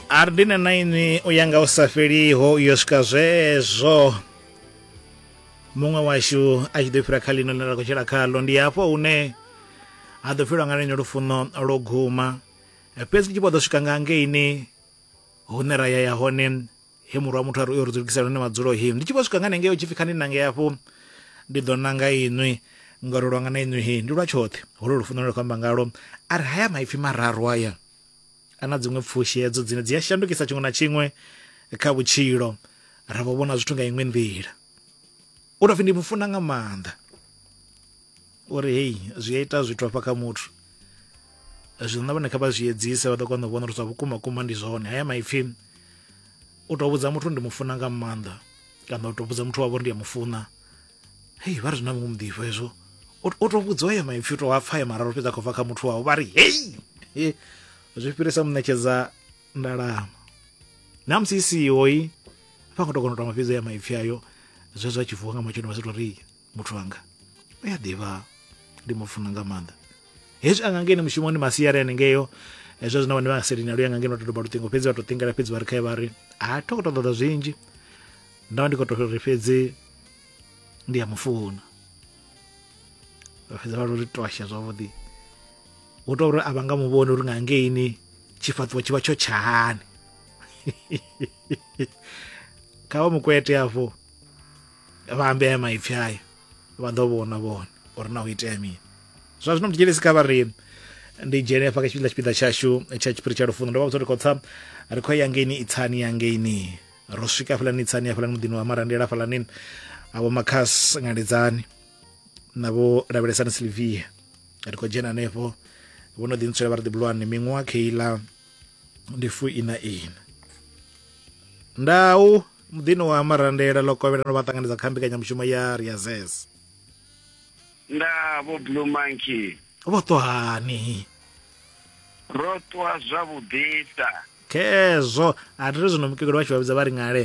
ardina na inwi u ya nga u sa fheliho yo swika zwezwo muṅwe washu a tshi ḓo fhira kha ḽino ḽine ra khou tshila khaḽo ndi hafho hune ha ḓo fhirwa nga lenyo lufuno lwo guma fhedzi tshi vho ḓo swika nga ngeini hune ra ya ya hone he murwa muthu a ri uyo ri dzulukisela hone madzulo hi ndi tshi vho swika nga nengei u tshi pfi kha ndi nange afho ndi ḓo nanga inwi ngori lwanga na inwi hi ndi lwa tshoṱhe holo lufuno lwe khou amba ngalo a ri haya maipfi mararu aya a na dziṅwe pfushi hedzo dzine dzi a shandukisa tshiṅwe na tshiṅwe kha vhutshilo ra vho vhona zwithu nga iṅwe nḓila u tou pfi ndi mufuna nga maanḓa o ri hei zwi a ita zwithu hafha kha muthu zwino na vhone kha vha zwi edzise vha ḓo kona u vhona uri zwa vhukuma kuma ndi zwone haya maipfhi u tou vhudza muthu ndi mufuna nga maanḓa kana u tou vhudza muthu wavho ndi ya mufuna hei vha ri na muṅwe muḓifho hezwo o tou vhudzwa ya maipfhi u tou a pfa ya mararu fhedza khou bva kha muthu wavho vha ri hei zwi fhirisa muṋetshedza ndalama na musi i siho i vha khou tou kona u tamba fhedzi ya maipfhi ayo zwezwo a tshi vuwa nga matsheloni vha sa tou ri muthu wanga u a ḓivha ndi mu funa nga maanḓa hezwi anga ngeno mushumoni masiari anengeyo hezwo zwino vhane vha nga selina luya nga ngeno to doba luṱingo fhedzi vha to ṱingela fhedzi vha ri khae vha ri ha tho to ṱoḓa zwinzhi nda vha ndi khou to ri fhedzi ndi ya mufuna vha fhedza vha ri twasha zwavhuḓi hu tou uri a vha nga muvhoni uri nga ngeini tshifhaṱuwo tshi vha tsho tshahani kha vha mukwete afho vha ambe aya maipfi aya vha ḓo vhona vhone uri na u itea mini zwa zwino mthetshelesi kha vha ri ndi dzhene hafha kha tshifhinga tshipiḓa tshashu tsha tshiphiri tsha lufuno ndo vha vhudza uri khotsa ri khou ya ngeini itsani ya ngeini ro swika hafhalani itsani hafhalani muḓini wa marandela hafhalani avho makhas ngaledzani na vho lavhelesani silvia ri khou dzhena hanefho vho no ḓi ntswela vha ri ḓibulwane miṅwaha kheiḽa ndi fu ina ina ndau muḓini wa marandela ḽo kovhela no vha ṱanganedza kha mbekanyamushumo ya riazes nda vho blue monkey vho ṱohani ro ṱwa zwavhuḓisa khezwo a ri ri zwino mukegulu vha tshi vha vhidza vha ri ngale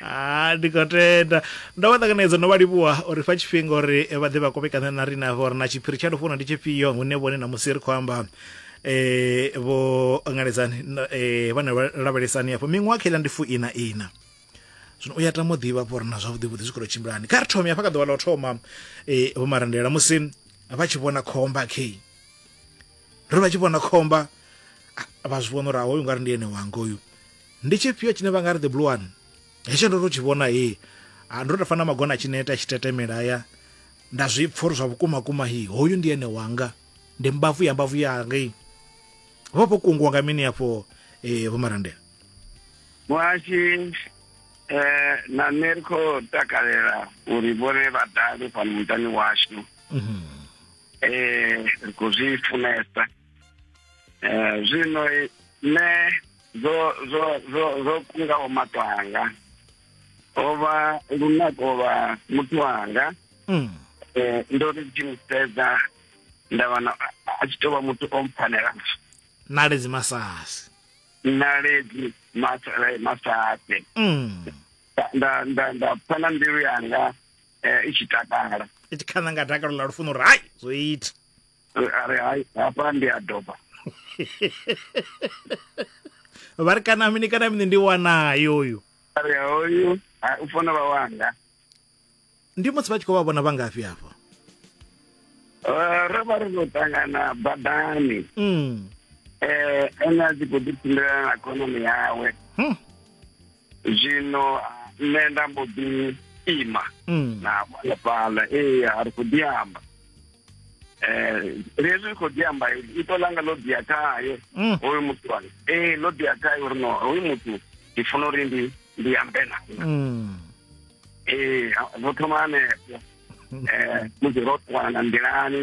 ha ndi khou tenda ndo vha ṱanganedza no vha livhuwa uri fa tshifhinga uri vha ḓe vha kovhekana na riṋe hafha uri na tshiphiri tsha lufuno ndi tshifhio hune vhone na musi ri khou amba eh vho ngaledzani na- eh vhana vha lavhelesani hafho miṅwaha kha iḽa ndi fu ina ina zwino u ya tama u ḓivha hafho uri na zwavhuḓi vhuḓi zwi khou tou tshimbilani kha ri thome hafha kha ḓuvha ḽa u thoma eh vho marandela musi vha tshi vhona khomba khe ri vha tshi vhona khomba ah, vha zwi vhona uri ahoyu nga ri ndi ene wanga uyu ndi tshifhio tshine vha nga ri the blue one hetsho ndo to tshi vhona he ah, ndo to fana magona tshi neta tshi tetemela ya nda zwi pfha uri zwa vhukuma kuma hi hoyu ndi ene wanga ndi mbavu ya mbavu yanga i vha vho kungiwa nga mini afho eh vho marandela muhashi eh na nṋe ri khou takalela uri vhone vha dale fhano muṱani washu mhm. eh ri khou zwi funesa eh zwino nṋe zwo zwo zwo zwo kungaho maṱo anga ho vha lunako lwa muthu wanga mm. eh, ndo ri tshi mu sedza nda wana a tshi tou vha muthu o mpfanela naledzi masasi naledzi eh, masasi mm. nda nda nda pfa na mbilu yanga eh, i tshi takala i tshi khana nga dakalo ḽa lufuno uri hai zwo ita a ri hai hafha ndi a doba vha ri kana mini kana mini ndi wanayo uyu a ri hoyu ha- u funa vha wanga ndi musi vha tshi khou vha vhona vha ngafhi afho Eh, ro vha ri khou ṱangana badani mm. um ene a tshi khou ḓi tshimbilelana na khonani yawe Hmm. zwino nṋe nda mbo ḓi ima mm. na fhala fhala ee a ri khou ḓi amba um lezwi ri khou ḓi amba ito langa ḽo ḓia khaye mm. hoyu muthu wa ee ḽo ḓia khaye uri no hoyu muthu ndi funa uri ndi ndi ambe na mm. ee vho thoma hanefho um musi ro ṱwana nḓilani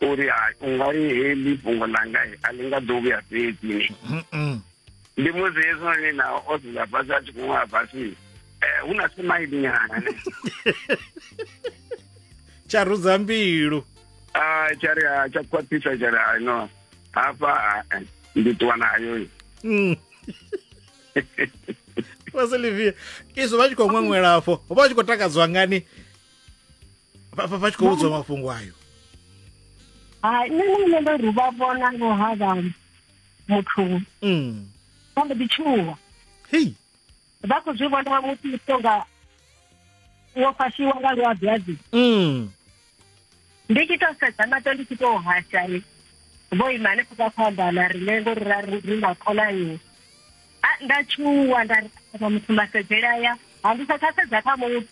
uri hai u nga ri heḽi fhungo ḽanga a ḽi nga ḓo vhuya fhedzi ni ndi musi hezwinoni nao o dzula fhasi a tshi khou ṅwala fhasi eh, hu na simaili nyana ne tsha rudza mbilu ah, tsha ri ah, tsha khwaṱhisa tsha ri ah, no hafha eh, ndi ṱuwa nayo mm. vasilivia izwo vha tshi khou ṅweṅwela afho vha tshi khou takadzwa ngani vha vha- vha tshi khou vhudzwa mafhungo ayo hai nṋe na nṋe ndo ri vha vhona ngo havha muthu Mm. vha mbo ḓi tshuwa hei vha khou zwi vhona musi u tonga wo fashiwa nga luabiazi Mm. ndi tshi to sedza mato ndi tshi to hashani vho ima hanefho ka khoambana rine ngori ra ri ri na khonani nda tshuwa nda ri ṱhogomela muthu masedzele aya ha ndi sa tsha sedza kha muthu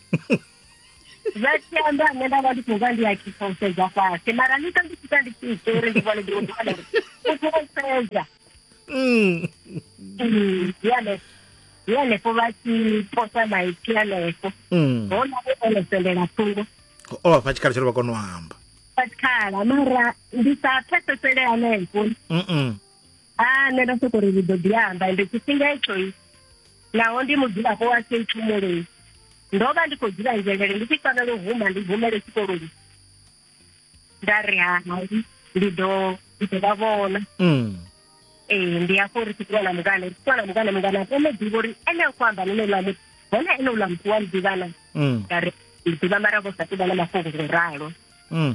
zwa tshiamba nṋe nda vha ndi khou vha ndi a khisa u sedza fhasi mara ni sa ndi tshita ndi tshi ita uri ndi vhone ndiroa uri u khou vha sedza mm. mm, yale yalefho vha tshi posa maipfi yalefho mm. hona vho ono sendela thungo o vha fha tshikhala tsho ri vha kona u amba tshikhala mara ndi sa pfesesele hanefho a nṋe nda soko ri ri ḓo ḓi amba ende tshifhinga etshoyi naho ndi mudzulapo wa sei tshumuloni ndo vha ndi khou dzula nzhelele ndi tshi fanela u huma ndi humele tshikoloni nda ri hai ndi ḓo ndi ḓo vha vhona mm. ee ndi afho ri tshi ṱuwa na mungana ri tshi ṱuwa na mungana mungana a kone ḓivha uri ene a khou amba nene uḽa muthu hone ene uḽa muthu wa muḓivhana mm. nda ri ndi ḓivha mara vho sa ṱuvha na mafhungo ngo ralo mm.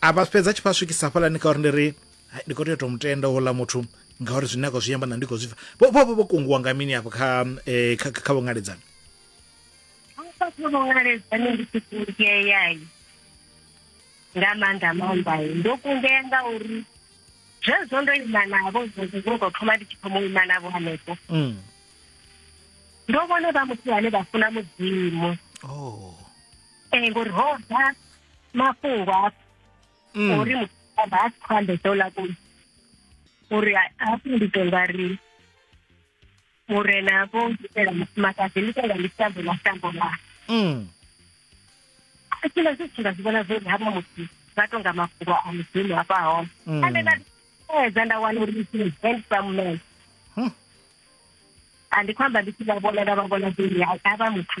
a vha fhedza tshi vha swikisa hafhalani kha uri ndi ri hai ndi khou tea u tou mutenda houḽa muthu ngauri zwine a khou zwi amba na ndi khou zwi pfa vho vho vho vho kunguwa nga mini afho kha eh, kha kha vhongaledzani hafha kha vhongaledzani ndi tshi kungeeyai nga maanḓa maanḓai ndo kungea nga uri zwezwo ndo ima navho zwezwo zwo tou thoma ndi tshi thoma u ima navho hanefho Mm. ndo vhona vha muthu ane vha funa mudzimu oh um ngori ho bva mafhungo hafhu Mm. uri muthu a vha a si khou ambesa uḽa kule uri ha- hafhu ndi tou nga ri murena vho itela mufumakadzi ndi tou nga ndi shambo ḽa shambo ḽa Mm. a tshila zwi tshi nga zwi vhona zwori havha muthu vha tou nga mafhungo a mudzimu hafha hone Mm. ane nda edza nda wana uri ndi handsome man Huh. a ndi khou amba ndi tshi vha vhona nda vha vhona zwori havha muthu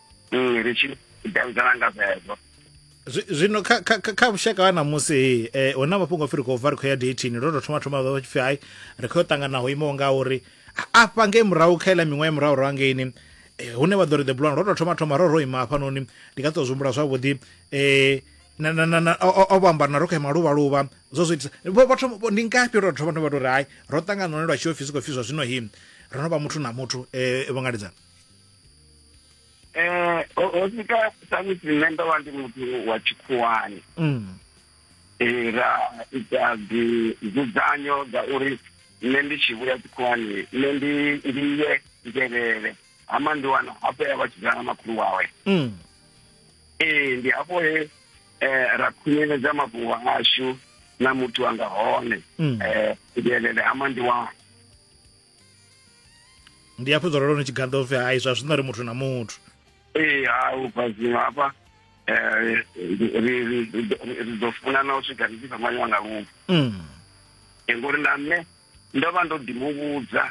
mm, ri tshi davhidzana nga zwezwo zwino kha kha kha vhushaka ha ṋamusi eh huna mafhungo firi khou bva ri khou ya dating ro tou thoma thoma vha tshipfi hai ri khou yo ṱangana ho imaho nga uri afha ngei murahu kha iḽa miṅwaha ya murahu ro angeini eh, hune vha ḓo ri the blond ro tou thoma thoma ro ro ima hafhanoni ndi nga tou zwihumbula zwavhuḓi eh na na na o vhamba na ro kha maluvha luvha zwo zwi vho vhathu ndi ngafhi ro thoma thoma vha tori hai ro ṱangana hone lwa tshi ofisi khou fiswa zwino hi ro no vha muthu na muthu eh vho ngaledzana eh ho sika samusi nṋe ndo vha ndi muthu wa tshikhuwani mm. eh, ra ita dzudzanyo dza uri nṋe ndi tshi vhuya tshikhuwani nṋe ndi ndi ye ngelele hama ndi wana hafho ya vha tshidzana makhulu wawe mm. ee eh, ndi hafho he eh, ra khunyeledza mafhungo ashu na muthu anga hone mm. eh ngelele hama ndi wana ndi hafho dzolo lone tshiganda upfi hai zwa zwino ri muthu na muthu ee ha ubva zwino hafha eh, ri ḓo funana u swika ri tshi fhambanyiwa nga lufu mm. eh, ngori na nṋe ndo vha ndo ḓi muvhudza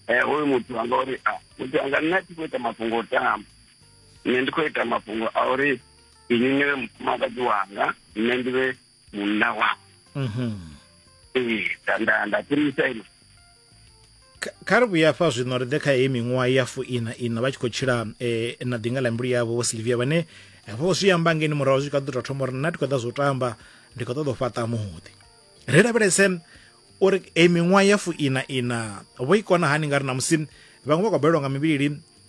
eh, hoyu muthu anga uri ah, muthu anga nṋe a thi khou ita mafhungo o tamba nṋe ndi khou ita mafhungo a uri ini ni vhe mufumakadzi wanga nṋe ndi vhe munna wa mhm. ee nda nda tshimisa ino kha ri vhuya fha zwino ri ḓe kha heyi miṅwaha ya fuina ina vha tshi khou tshila um na ḓinga ḽa mbilu yavho vho silvia vhane vho zwi amba ngeni murahu zwi kha ḓi tou thoma uri nna ndi khou ḓa zwo tamba ndi khou ṱoḓa u fhaṱa muḓi ri lavhelese uri eyi miṅwaha ya fuina ina vho i kona hani nga ri na musi vhaṅwe vha khou balelwa nga mivhili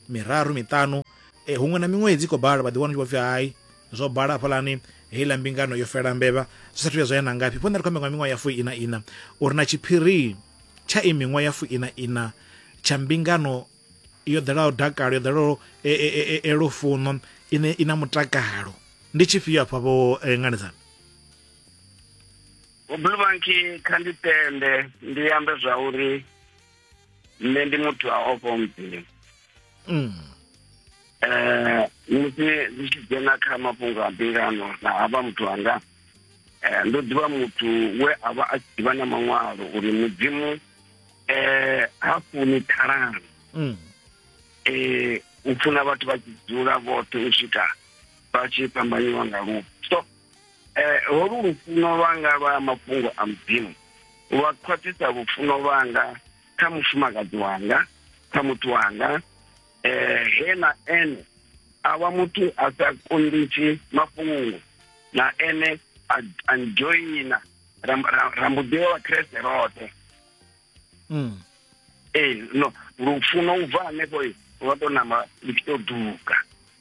miraru miṱanu um huṅwe na miṅwedzi i khou bala vha ḓi wana tshi vho pfi hai zwo bala hafhaḽani heiḽa mbingano yo fela mbevha zwi sathu ya zwa ya na ngafhi fhona ri khou amba nga miṅwaha ya fu ina ina uri na tshiphiri tsha i miṅwaha ya fu ina ina tsha mbingano yo ḓelaho dakalo yo ḓelaho e, e, e, lufuno ine i na mutakalo ndi tshifhio afha vho nganedzana vhobulubanki kha ndi tende ndi ambe zwa uri nṋe ndi muthu a ofho mudzimu um mm. musi zwi tshi dzhena kha mafhungo a mbingano na avha muthu anga um ndo ḓivha muthu we a vha a tshi ḓivha na maṅwalo uri mudzimu um ha funi ṱhalano um mm. eh, u funa vhathu vha tshi dzula vhoṱhe u swika vha tshi fhambanyiwa nga lufu so Eh, holu lufuno lwanga lwa mafhungo a mudzimu lwa khwaṱhisa lufuno lwanga kha mufumakadzi wanga kha muthu wanga eh he na ene a vha muthu a sa kunditshi mafhungo na ene a a ndzhoina ra ra- ra mbo ḓi vha vhakreste roṱhe Mm. ee no lufuno u bva hanefho lwa tou namba lu tshi tou duga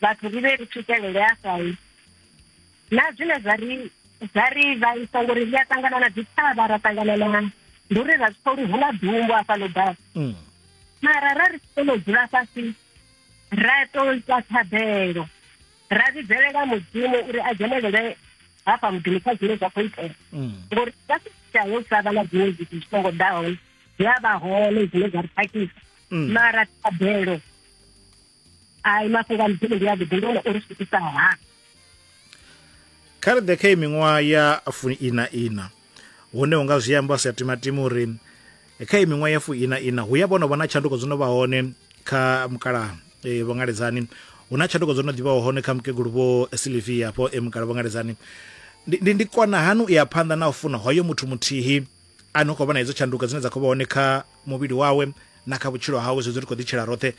vhathu ri vhe ri swikelele afhai na zwine zwa ri zwa ri vhaisa ngori ri a ṱangana na dzithavha ra ṱangana na ndi uri ra zwi pfa uri hu na dumbo afha ḽo ḓaho mm. mara ra ri kone u dzula fhasi ra to ita thabelo ra vhidzelela mudzimu uri a dzhenelele hafha muḓini kha zwine zwa khou itea mm. ngori sa sitshitsha yo sa vha na dziṅwe zwithu zwi songo ḓaho zwi a vha hone zwine zwa ri khakhisa mm. mara thabelo ai mafhungo a mphele ndi avhuḓi ndi one o ri switisaho ha kha ri ḓe kha i miṅwaha ya funi ina ina hune hu nga zwi amba sa timatima uri kha i miṅwaha ya funi ina ina hu ya vhono vha na tshanduko dzo no vha hone kha mukala e, vho ngaledzani hu na tshanduko dzo no ḓivhaho hone kha mukegulu vho silivia afho e mukala vho ngaledzani ndi kona hani u ya phanḓa na u funa hoyo muthu muthihi a ni khou vhona hedzo tshanduko dzine dza khou vha hone kha muvhili wawe na kha vhutshilo hawe zwedzo ri khou ḓitshela roṱhe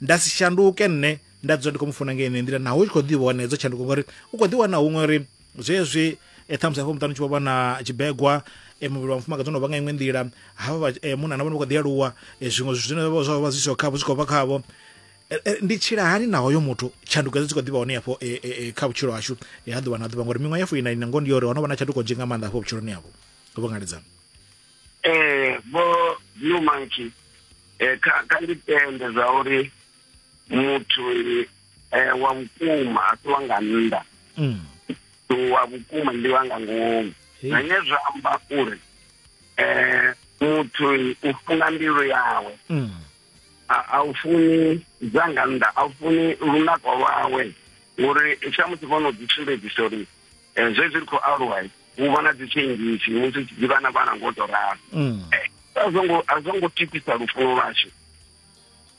nda si shanduke nṋe nda dzula ndi khou mu funa ngei nḓila naho u tshi khou ḓi vhona hedzo tshanduko ngori u khou ḓi wana huṅwe uri zwezwi e ṱhamusi hafho muṱani u tshi vho vha na tshibegwa e muvhili wa mufumakadzi ono vha nga iṅwe nḓila havha e, munna na vhone vha khou ḓi aluwa e, zwiṅwe zwithu zwine vha zwa vha zwi siho khavho zwi khou bva khavho e, ndi tshila hani na hoyo muthu tshanduko dzi khou ḓivha hone hafho kha vhutshilo hashu ha ḓuvha na ḓuvha ngori miṅwaha ya fuina ina ngoho ndi yo uri ho no vha na tshanduko nzhi nga maanḓa hafho vhutshiloni havho vho ngaledzana eh vho blue monkey eh kha kha ndi tende zwa uri muthu eh wa vhukuma a si wa nga nnḓa mm. wa vhukuma ndi wa nga ngomu na nge zwa amba uri eh muthu u funa mbilu yawe mm. a u funi dza nga nnḓa a u funi lunako lwawe uri tsha musi vho no ḓi sumbedzisa uri Eh, zwezwi ri khou aluwa hu vha na dzitshengisi musi tshi ḓivha na vhana ngo to ralo mm. eh, a zwo ngo a zwo ngo tikisa lufuno lwashu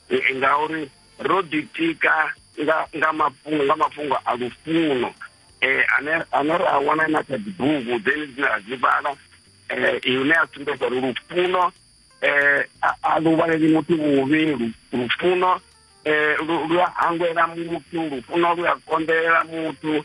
eh, ngauri ro ḓitika nga nga mafhungo nga mafhungo a lufuno eh ane ane ra wana na kha dzibugu then dzine ra dzi vhala eh ine a sumbedza uri lufuno eh a lu vhaleli muthu vhuvhi lufuno eh lu a hangwela muthu lufuno lu a konḓelela muthu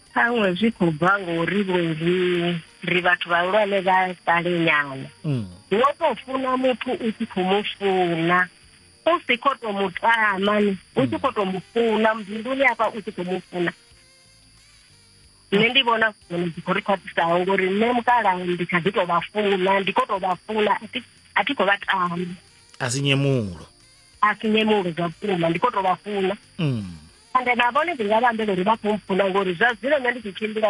ṱhaṅwe zwi khou bva ngori vhunzhi ri vhathu vhahulwane vha sale nyana mm. wo to funa muthu u tshi khou mu funa u si khou to mu tama ni u tshi khou to mu funa mbiluni afha u tshi khou mu funa nṋe ndi vhona zwone dzi khou ri khwaṱhisaho ngori nṋe mukala ndi kha ḓi to vha funa ndi khou to vha funa a thi khou vha tama a si nyemulo a si nyemulo zwa vhukuma ndi khou to vha funa mm. ende na vhone ndi nga vha ambela uri vha khou mpfuna ngori zwa zwino nṋe ndi tshi tshimbila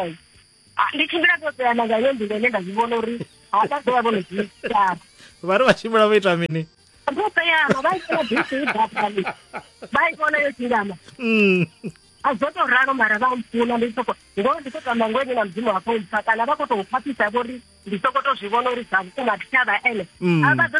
ah, ndi tshimbila ndo teana nga yo nḓila ine nda zwi vhona uri ha vha ḓo vha vho no zwiitara vha ri vha tshimbila vho ita mini vho teana vha itela bisi i ḓaphani vha i vhona yo tshingama mm. a zwo tou ralo mara vha mpfuna ndi soko ngo ndi khou tamba ngo ene na mudzimu wa khou mpfa kana vha khou tou khwaṱhisa vho ri ndi soko to zwi vhona uri zwa vhukuma thi tsha vha ene mm. a vha ḓo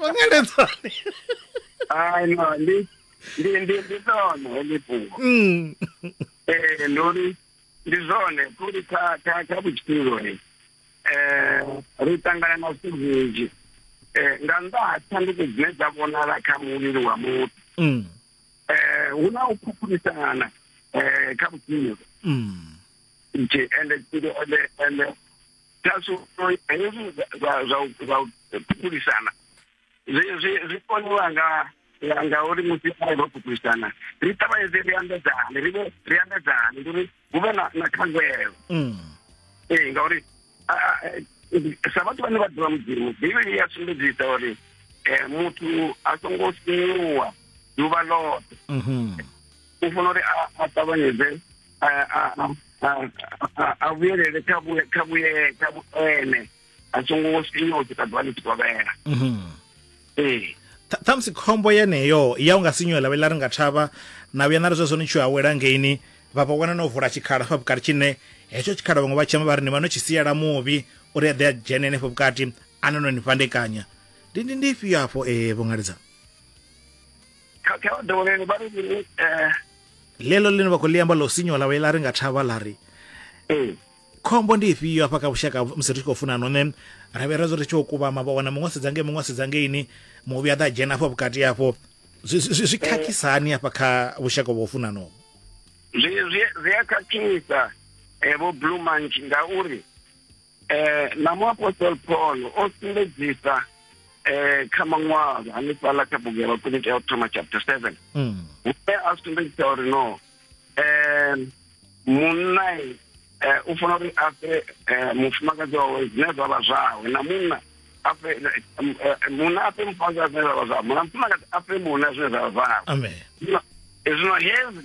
mangeledzani ai no ndi ndi ndi ndi ḽone heḽi fhungo Mm. Eh, ndi uri ndi zwone kuri kha kha kha vhutshilo ni eh ri ṱangana na zwithu zwinzhi eh nga nnḓa ha tshanduko dzine dza vhonala kha muvhili wa muthu Mm. eh hu na u phuphulisana eh kha vhutshilo Mm. nje ende ende ende kha zwino hezwi zwa u ṱhukulisana zwi koniwa nga ngauri musi arali ro ṱhukulisana ri ṱavhanyedze ri ambedzane ri ri ambedzane ndi uri hu vhe na khangwelo mm. ee ngauri sa vhathu vhane vha ḓivha mudzimu bivhili ya sumbedzisa uri um muthu a songo sinyuwa ḓuvha ḽoṱhe mhm. u funa uri a ṱavhanyedze a vhuyelele kha vhuye kha vhuye kha vhuene a songo sinywa u swika ḓuvha ḽi tshi kovhela mhm. ee ṱhamusi khombo yeneyo ya u nga sinyuwe ḽa vhe ḽa ri nga thavha na vhuya na ri zwezwo ni tshi awela ngeini vha vha wana no vula tshikhala fha vhukati tshine hetsho tshikhala vhaṅwe vha tshema vha ri ni vha no tshi siela muvhi uri a ḓe a dzhene henefho vhukati a no no ni fhandekanya ndi ndi ndi ifhio afho ee vho ṅaledzana kha kha vha dovholele vha ri mini eh, ḽeḽo ḽine vha khou ḽi amba ḽo sinywa ḽa ḽa ri nga thavha ḽa ri ee khombo ndi ifhio hafha kha vhushaka musi ri tshi khou funa no ne ra vhe ra zwo ri tshi khou kuvhama vha wana muṅwe a sedza ngei muṅwe a sedza ngeini muvhi a ḓa a dzhena afho vhukati afho zwi- zwi zwi- zwi khakhisa hani hafha kha vhushaka vha u funanoho zwi zwi zwi a khakhisa eh, vho blue manch ngauri eh na muapostoli paul o sumbedzisa eh kha maṅwalo hanefhaḽa kha bugu ya vhakoni tea u thoma chapter seven mm. hune a sumbedzisa uri no eh munna eh u funa uri a fhe eh, mufumakadzi wawe zwine zwa vha zwawe na munna a fhe eh, eh, munna a fhe mufumakadzi zwine zwa vha zwawe munna mufumakadzi a fhe munna zwine zwa vha zwawe amen zwino hezwi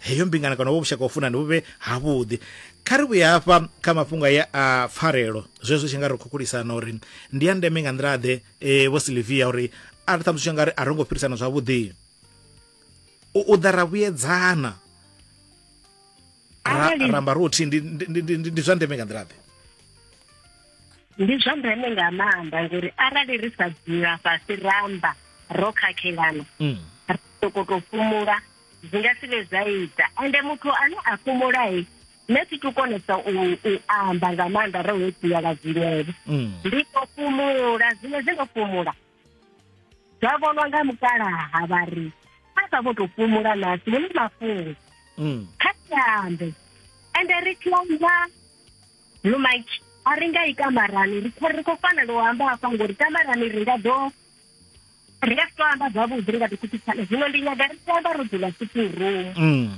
heyo mbingano kana vho vhushaka ufunani vhu vhe havhuḓi kha ri vhuye hafha kha mafhungo ya a pfarelo zwezwo tshi nga ri khukhulisana uri ndi ya ndeme nga nḓila ḓe e, vho silivia uri a ri ṱhamusi tshi nga ri a ro ngo fhirisana zwavhuḓi u u ḓa ra vhuyedzana ramba ro thi ndi zwa ndeme nga nḓila ḓe ndi zwa ndeme nga maanḓa ngori arali ri sa dzula fhasi ramba ro khakhelana mm. ri sokoto fhumula zwi nga si vhe zwa ita ende muthu ane a fhumulae nṋe thi tu konesa u amba nga maanḓa ro ho dzula nga zwinevo mm. ndi to fhumula zwine zwi ndo fhumula zwa vhonwa nga mukalaha vha ri a sa vho to fhumula nasi hune mafhungo mm. kha siambe ende ri tshi amba lumaiki a ri nga i kamarani ri khou fanela u amba hafha ngori kamarani ri nga ḓo ri nga si to amba zwavhuḓi ri nga ḓi khuthisana zwino ndi nyaga ri tshi amba ro dzula sitting room mm.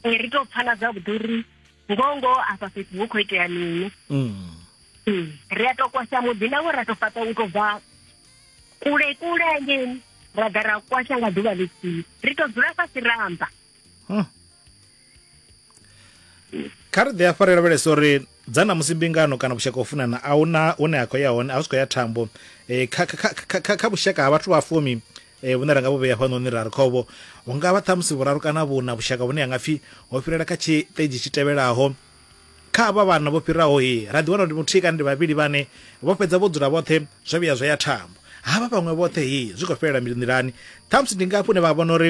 eh, ri to pfana zwavhuḓi uri ngoho ngoho afha fhethu hu khou itea mini mm. hmm. ri a to kwasha muḓi nawo ra to fhaṱa u to bva kule kule ngeni ra ḓa ra kwasha nga ḓuvha ḽithihi ri to dzula fhasi ramba kha ri ḓi afha ri lavhelesa uri dza na musi mbingano kana vhushaka u funana a hu na hune a khou ya hone a hu si khou ya thambo um kha vhushaka ha vhathu vha fumi um vhune ra nga vhu vhea fhanoni ra ri khovho hu nga vha ṱhamusi vhuraru kana vhuna vhushaka vhune ha nga pfhi ho fhirela kha tshiṱedzhi tshi tevhelaho kha avha vhana vho fhiraho he ra ḓi wana uri muthihi kana ndi vhavhili vhane vho fhedza vho dzula vhoṱhe zwa vhuya zwa ya thambo havha vhaṅwe vhoṱhe he zwi khou fhelela nḓilani ṱhamusi ndi ngafhi une vha vhona uri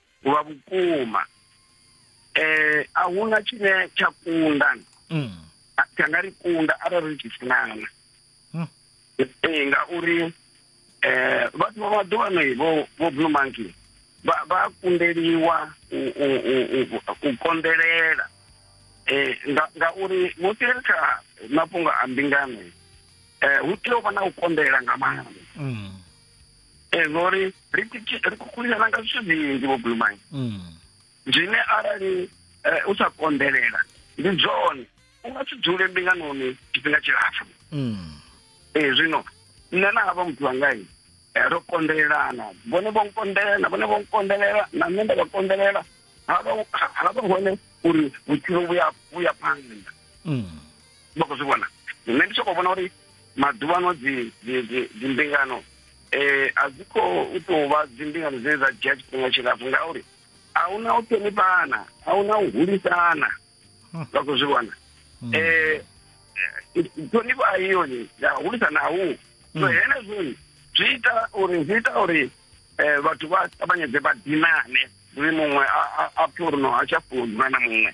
lwa vhukuma eh a huna tshine tsha kunda mm. tsha nga ri kunda arali ri tshi funana mm. ee ngauri eh vhathu vha maḓuvhano vho vho blue monkey vha vha kundeliwa u u u u kondelela eh nga ngauri musi ri kha mafhungo a mbingano eh hu tea u vha na u kondelela nga maanḓa mm. ee vho ri ri kukuliselana nga zwithu zwinzhi vho bulumani mm. zwine arali eh, u sa konḓelela ndi zwone u nga si dzule mbinganoni tshifhinga tshilapfu mm. ee zwino nṋe na havha muthu wangai eh, ro konḓelelana vhone vho nkonḓelela na vhone vho nkonḓelela na nṋe nda vha konḓelela ha vha hone uri vhutshilo vhuya phanḓa mm. vha khou zwi vhona nṋe ndi soko vhona uri maḓuvha ano dzi dzimbingano um eh, a dzi khou tou vha dzimbingano dzine dza dzhia tshifhinga tshilapfu ngauri a hu na u ṱhonifhana a hu na u hulisana hmm. vha khou zwi vhona um hmm. eh, ṱhonifho a yoni ya hulisana a hu so hmm. henezwoni zwi ita uri zwi ita uri um vhathu vha ṱavhanyedze vha dinane uri muṅwe a pfhe uri no a tsha funa na muṅwe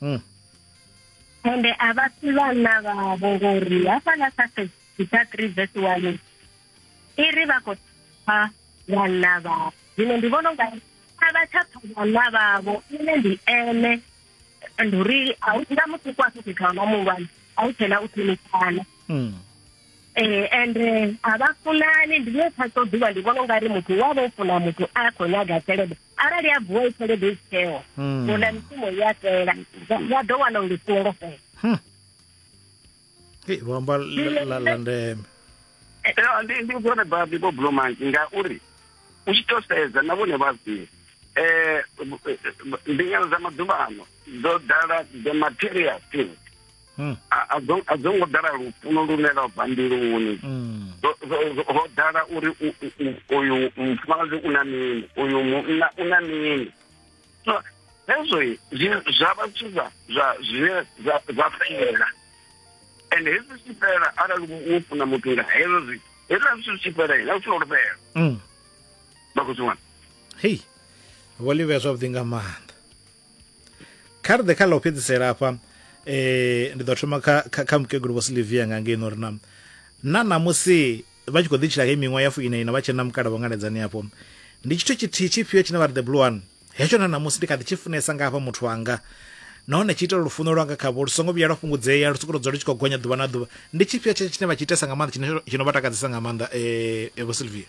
mm. ende a vha si vhanna vhavho ngori hafhaḽa kha sesita three vese one i ri vha khou pha vhanna vhavho zwino ndi vhona unga a vha tsha pha vhanna vhavho ine ndi ene ndi uri a u nga muthu kwa fhethu kha nga muhulwane a u tshena u ṱhonifhana mm. eh ende eh, a vha funani ndi ne phaso ḓuvha ndi vhona unga ri muthu wa vha u funa muthu a khou nyaga tshelede arali a vuwa i tshelede i tsheo hmm. ula mishumo i a fhela wa ḓo wana uri songo fhela hmm. vho amba la ndeme eh, eh, ndi ndi vhone babi vho blomanki ngauri u tshi to sedza na vhone vhazii um eh, mbingano dza maḓuvha ano dzo ḓala the material things hmm. a dzo ngo ḓala lufuno lune lwa bva mbiluni hmm. ho ḓala uri uyu mufumakadzi u na mini uyu munna u na mini so hezwo zwa vha zwithu zwa zwine zwa fela and hezwi zwi fela arali wo funa muthu nga hezwo zwithu hezwiḽa zwithu zwi tshi fhela na u funa uri fhela hmm. vha khou zwi wana hei vho livhea zwavhuḓi nga maanḓa kha ri ḓe kha ḽa u fhedzisela afha um ndi ḓo thoma kha kha mukegulu vho silivia nga ngei no ri na na ṋamusi vha tshi khou ḓi tshila hei miṅwaha ya fuina ina vha tshena mukala vhongaledzani afho ndi tshithu tshithihi tshifhio tshine vha ri the blue one hetsho na ṋamusi ndi kha ḓi tshi funesa nga hafha muthu wanga nahone tshi itela lufuno lwanga khavho lu songo vhuya lwa fhungudzea lu soko dzula lu tshi khou gonya ḓuvha na ḓuvha ndi tshifhio tshetsho tshine vha tshi itesa nga maanḓa tshine tshino vha takadzesa nga maanḓa um vho silvia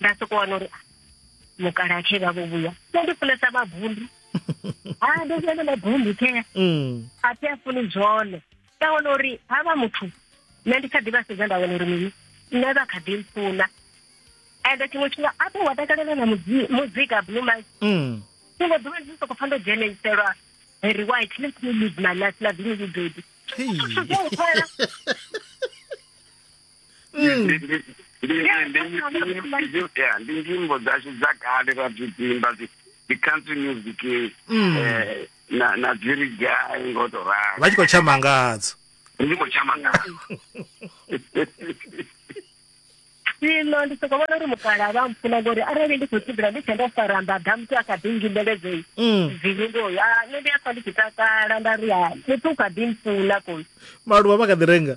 nda soko wana uri ah, mukalaha khe vha vho vhuya nṋe ndi funesa mabundu ha ah, ndi funesa mabundu khe mm. a thi a funi zwone nda wana uri ha vha muthu nṋe ndi kha ḓi vha sedza nda wana uri mini nṋe vha kha ḓi mpfuna ende tshiṅwe tshifhinga a ṱo wa takalela na muzika blue mike mm. tshiṅwe ḓuvha ndi soko pfa ndo dzheneiselwa very white let me live my life loving you baby mm. ndi nyimbo dzashu dza kale ra bzi dzimba dzi country music mm. eh, na dziri gai ngo to ralo vha tshi khou tshama ngadzo ndi khou tshama ngadzo zwino ndi soko vhona uri mukala vha mpfuna ngori arali ndi khou tshimbila ndi tshe ndo faramba damusi a kha ḓi ngimbeledzei mm. zvilingoyo a nṋe ndi a pfa ndi tshi takala nda ri a muthu u kha ḓi mpfuna koi maluvha vha kha ḓi renga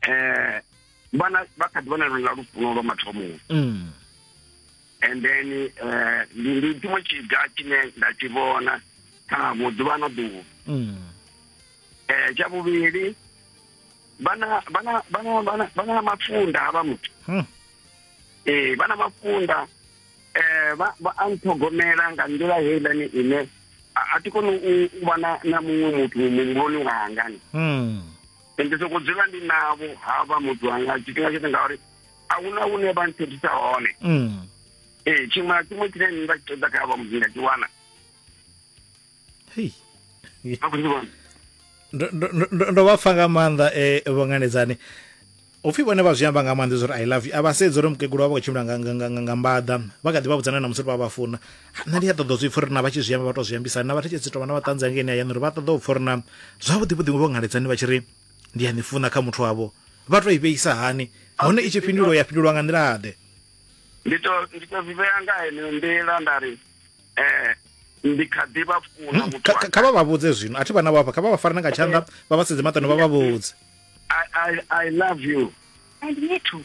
eh vhana vha kha ḓi vhona lwendo lwa lufuno lwa mathomoni mm. and then eh, ndi ndi tshiṅwe tshiga tshine nda tshi vhona kha vhuḓuvha na ḓuvha mm. eh tsha vhuvhili vhana vhana vhana vhana vhana mafunda havha muthu hmm. eh vhana mafunda eh vha vha anthogomela nga nḓila heiḽani ine a ti koni u vha na muṅwe muthu muhumbuloni wanga mm. ndi soko dzula ndi navho havha muthu wanga tshifhinga tshoṱhe ngauri a hu na hune vha nthethisa hone mm. ee tshiṅwe na tshiṅwe tshine nda tshi ṱoḓa kha havha muthu nda tshi wana ndo vha pfa nga maanḓa e vho nganedzani upfhi vhone vha zwi amba nga maanḓa zwa uri i love you a vha sedzi uri mukegulu vha vha khou tshimbila nga mbaḓa vha kha ḓi vha vhudzana na musi ri vha vha funa nṋe ndi a ṱoḓa zwi pfha uri na vha tshi zwi amba vha tou zwi ambisa na vhathetshedzi tovha na vhaṱanzi hangeini hayani uri vha ṱoḓa u pfha uri na zwavhuḓi vhuḓi vho ngaledzani vha tshi ri ndi a ni funa kha muthu wavho vha tou i vheisa hani hone i tshi fhindulwa ya fhindulwa nga nḓila ḓe ndi to ndi to zwi vhea nga heneyo nḓila nda ri eh ndi kha ḓi vha funa hmm, muthu kha vha vha vhudze zwino a thi vha na vhafha kha vha vha farane nga tshanḓa vha vha sedze maṱano vha vha vhudze I, I, I love you and me too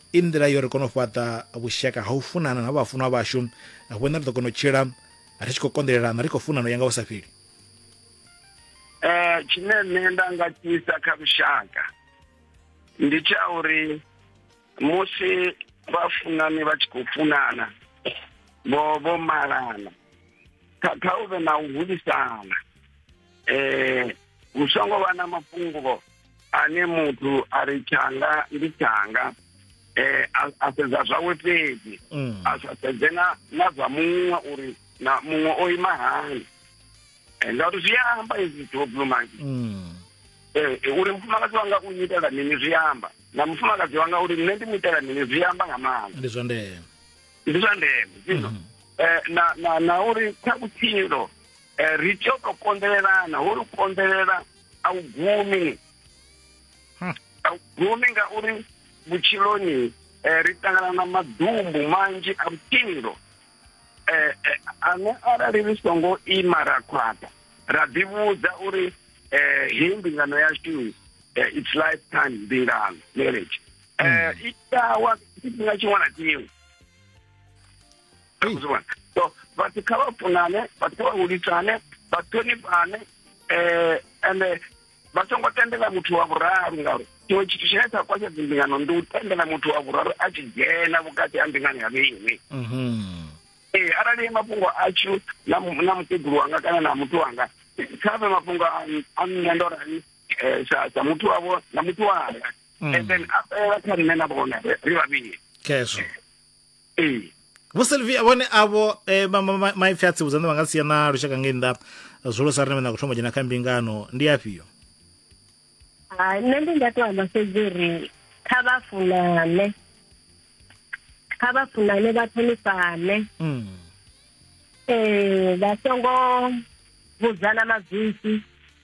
I nḓila yo ri kona u fhaṱa vhushaka ha u funana na vhafunwa vhashu, vhone ri ḓo kona u tshila ri tshi khou konḓelelana ri khou funana u ya nga hu sa fheli. Eh, tshine nṋe nda nga tshisa kha lushaka ndi tsha uri musi vhafunani vha tshi khou funana vho vho malana kha kha u vhe na u hulisana eh hu songo vha na mafhungo ane muthu a ri tshanga ndi tshanga eh a sedza zwawe fhedzi mm. a sa sedze na na zwa muṅwe uri na muṅwe o ima hani eh, ngauri zwi amba izwi zwithu vho blue monkey mm. eh, eh, uri mufumakadzi wanga u nyitela mini zwi amba na mufumakadzi wanga uri nṋe ndi mu itela mini zwi amba nga maanḓa ndi zwa ndeme ndi zwa ndeme mm. eh, na na na uri kha vhutshilo Eh, ri tea u to konḓelelana holu konḓelela a u gumi hmm. a u gumi ngauri vhutshiloni eh, ri ṱangana na madumbu manzhi a vhutshilo eh, ane arali ri songo ima ra khwaṱha ra ḓivhudza uri hei mbingano yashu its life time mbingano marriage hmm. i tawa tshifhinga tshiṅwe na tshiṅwe akuzivona so bathi khabafunane bathi khabahulisane baṱhonifhane um ende vha songo tendela muthu wa vhuraru ngauri tshiṅwe tshithu tshine tsha kwasha dzimbingano ndi u tendela muthu wa vhuraru a tshi dzhena vhukati ha mbingano ya vheiwe mhm. ee arali mafhungo atshu na mukegulu wanga kana na muthu wanga kha vhe mafhungo a nṋe ndo rani um sa muthu wavho na muthu wanga mm. and then a fhelela kha nṋe na vhone ri vhavhili khezwo ee vhoselvia vhone avho eh, ma- ma- ma- maipfi a tsivhudza nṋe vha nga sia na lushaka ngei nnḓa zwolo sa rine vha nyago thoma u dzhena kha mbingano ndi afhio Ah, nṋe ndi nga to amba fhedzi uri kha vha funane kha vha funane vha ṱhonifhane Mm. um vha songo vhudzana madzwisi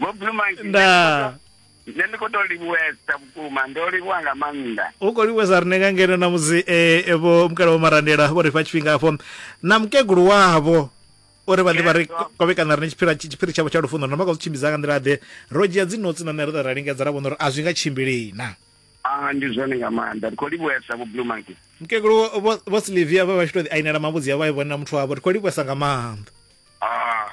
vho blue monkey nda nṋe ndi khou tou livhuwesa vhukuma ndo livhuwa nga maanḓa u khou livhuwesa rine nga ngeno na musi eh, eh, vho mukala vho marandela vho ri fha tshifhinga afho na mukegulu wavho uri vha ḓe vha ri Yebo. kovhekana rine tshiphiri tshi- tshiphiri tshavho tsha lufuno na maka zwi tshimbidza nga nḓila ḓe ro dzhia dzinotsi na nṋe ro ḓa ra lingedza ra vhona uri a zwi nga tshimbilei na a ndi zwone nga maanḓa ndi khou livhuwesa vho blue monkey mukegulu vho- vho vho silivia vha vha tshi to ḓi ainela mavhudzi a vha i vhone na muthu wavho ri khou livhuwesa nga maanḓa Ah,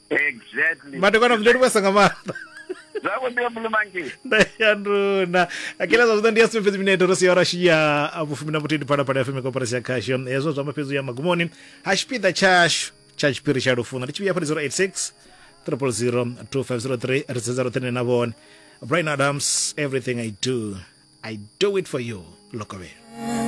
exactly madekwana mndeni kwesa nga maanḓa zako ndiyo mulumanki ndayanduna akela zwa zwino ndi ya sumbe fhedzi mineto ro siya rashi ya vhufumi na vhuthihi ndi phalaphala fm koporasi ya khasho hezwo zwa mafhedzo ya magumoni ha tshipiḓa tshashu tsha tshipiri tsha lufuno ndi tshivhiya phali 086 0002503 ri sedza roṱhene na vhone brian adams everything i do i do it for you lokovhelo